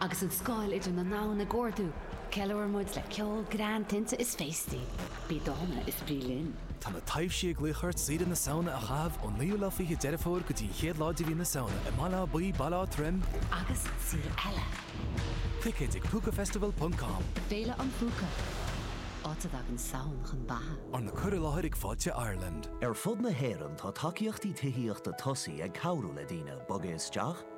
Agus an scáil idir na domhain ag ardú, ceiliúrann muid le ceol, greann, tinte is féastaí. Bí dána is bí linn. Tá na taibhsí ag glaoch ort oíche na Samhna a chaitheamh ón naoú lá fiche Deireadh Fómhair go dtí an chéad lá de mhí na Samhna i mBaile Átha Buí, Baile Átha Troim, agus sa saol eile. Ticéid ag Púcafestival ponc com. Féile an Phúca, áit a dtagann Samhain chun beatha. Arna cur i láthair ag Fáilte Ireland. Ar fud na hÉireann tá tacaíochtaí tithíochta tosaí ag cabhrú le daoine bogadh isteach,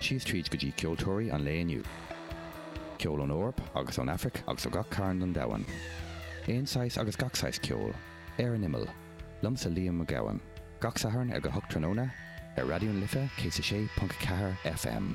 Síos tríd go dtí ceoltóirí an lae inniu. Ceol ón Eoraip agus ón Aifric agus ó gach cearn don domhan. Aon saghas agus gach saghas ceoil. Ar an Imeall. Liomsa Liam Mac Gabhann. Gach Satharn ag a hocht tráthnóna, ar Raidió na Life 106.4 FM.